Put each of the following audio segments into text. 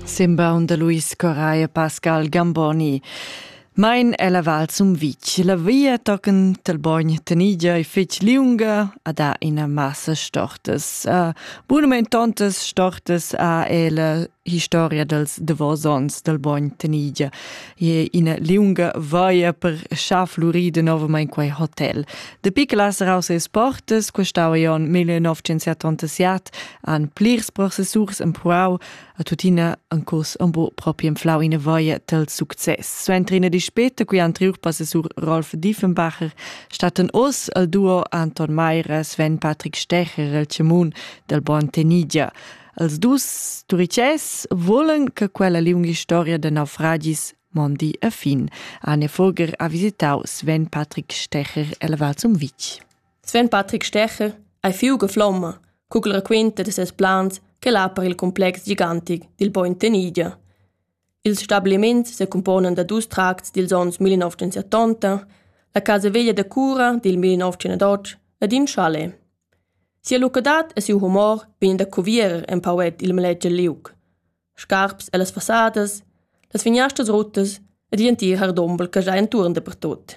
Simbaun da Luis Correa e Pascal Gamboni. Mein è la val Sumvitg. La via tochen tel bogn Tenigia è fetg liunga a da ina massa stortas. A monumentontas stortas a è la historia dels davosons del bogn Tenigia. E ina liunga vaia per schaflurir de novamain quei hotel. De piclas raus es portas, questava Jon 1977 han plirs processurs empruau a tuttina en curs embo propi enflau ina voia tel success. Suenter ina dispeta cui anteriur processur Rolf Diefenbacher statten oz al duo Anton Mayer e Sven Patrick Stecher el Cemun del Bon Tenidia. Els dus turices volen che quella liunga storia de naufragis mondi a fin. Anne Fogger ha visitau Sven Patrick Stecher el Val zum Vitg. Sven Patrick Stecher ei fiuga flomma cugl raquenta da ses plans ch'el ha per il complex gigantic dil bogn Tenidia. Ils stabiliments secumponan da dus tracts dils onns 1970, la casa veglia da cura dil 1908 ed in chalet. Sia lucadad e siu humor vegn da cuvier empauet il maletg liug. Scarps ellas fassadas, las finiastas ruttas ed gl'entir hardombel che già entuorn dapertut.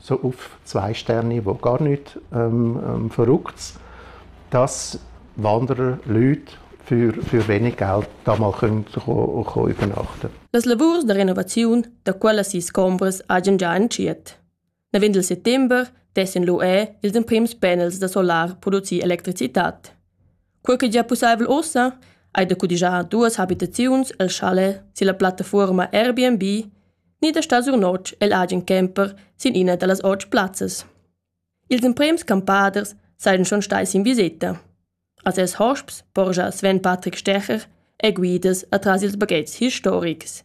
so auf zwei Sterne, wo gar nicht ähm, ähm, verrückt dass wandere Leute für, für wenig Geld da mal können, können, können übernachten Las lavurs da renovaziun da quella sis combras hagen già entschiet. Navend il settembre dessen l'UE ils emprims panels da solar produzir electricitat. Quei che gia pusseivel ussa ei da cudigiar duas habitaziuns el chalet silla plattafuorma Airbnb ni da star sur notg egl agen camper sin ina dallas otg plazzas. Ils emprems campaders seien schon stai sin viseta. A ses hosps porgia Sven Patrick Stecher è guidas atras ils baghetgs historics.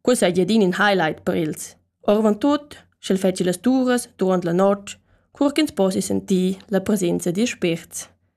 Quei sei adin in highlight per els. Orvan tut, sch'el fetschi las turas durant la notg, cur ch'ins possi sentir la presenza dils spirts.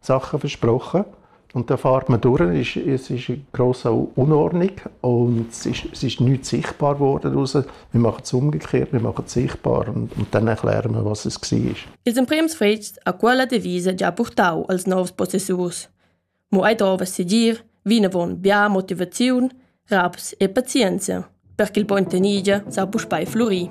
Sachen versprochen und dann fährt man durch, es, es ist eine grosse Unordnung und es ist, es ist nichts sichtbar geworden raus. Wir machen es umgekehrt, wir machen es sichtbar und, und dann erklären wir, was es war. Ils emprems fets a quella devisa già portau als novs possessurs. Mo ei dova seguir vinavon bia motivaziun, raps e pazienza, perché il bon tenigia sa puspei florì.